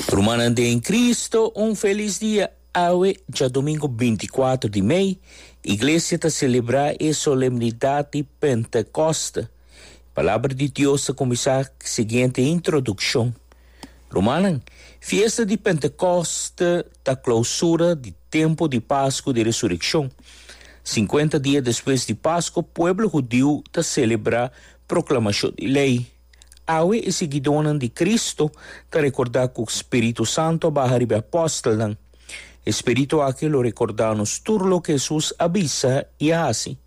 Rumannan den Cristo, un felis dia! Awe dja domingo binti kuater di mei, Iglesia ta selebrá e solemnidat di Pentekòst. Palabra di Dios ta kuminsá siguiente introdukshon, Rumannan, fiesta di Pentekòst ta klousura di tempu di Pasku di Resurekshon. Sinkuenta dia despues di Pasku, pueblo hudiu ta selebrá proklamashon di lei. Awe e siguidónan di Kristu ta rekordá ku spiritu santu a baha riba e apòstelnan. E spiritu akí lo rekordá anos tur loke Hesus a bisa i a hasi.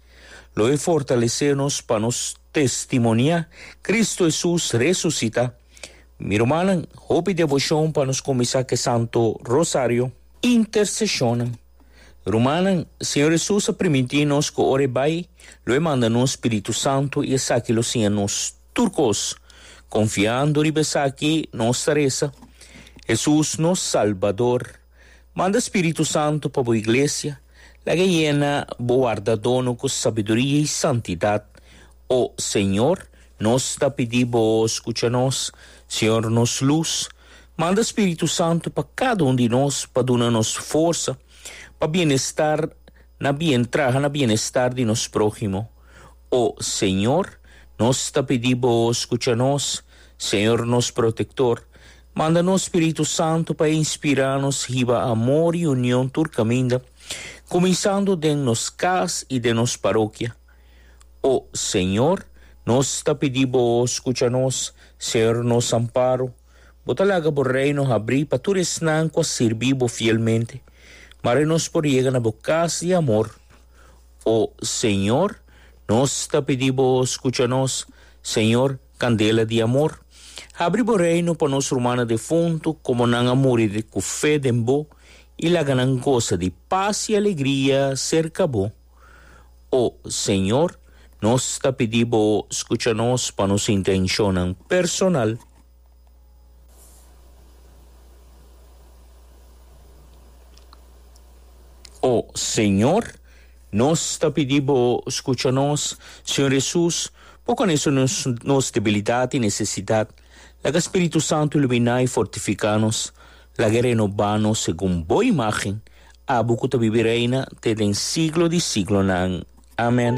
Lo e fortalesé nos pa nos testimoniá Kristu Hesus resusitá. Mi rumannan, hopi devoshon pa nos kuminsá ku e Santu Rosario. Interseshonnan. Rumannan, Señor Hesus a primintí nos ku ora e bai, lo e manda nos Spiritu Santu i esaki lo siña nos tur kos. Konfiando riba esaki, nos ta resa, Hesus, nos Salbador, manda Spiritu Santu pa bo Iglesia, laga e yena bo wardadónan ku sabiduria i santidat, O Señor, nos ta pidi Bo scucha nos. Señor, nos luz, manda Spiritu Santu pa cada un di nos pa duna nos forsa pa bienestar na bien traha na bienestar di nos prohimo. O Señor, nos ta pidi Bo scucha nos. Señor, nos Protector, manda nos Spiritu Santu pa inspira nos hiba amor y union tur caminda, cuminsando den nos cas y den nos parokia. O Señor, nos ta pidi Bo scucha nos, ser nos amparo. Bo ta laga Bo Reino habrí pa tur esnan cu a sirbi Bo fielmente. Mare nos por yega na Bo cas di amor. O Señor, nos ta pidi Bo scucha nos, Señor, candela di amor. Habri Bo Reino pa nos rumannan defuntu como nan a muri cu fe den Bo y laga nan goza di paz y alegria cerca Bo. O Señor, nos ta pidi Bo scucha nos pa nos intencionnan personal. O Señor, nos ta pidi Bo scucha nos. Señor Jesus, Bo conoce nos nos debilidad y necesidad. Laga Spiritu Santo ilumina y fortifica nos. Laga e renoba nos segun Bo imagen. Abo ku ta bibi reina te den siglo di siglonan. Amen.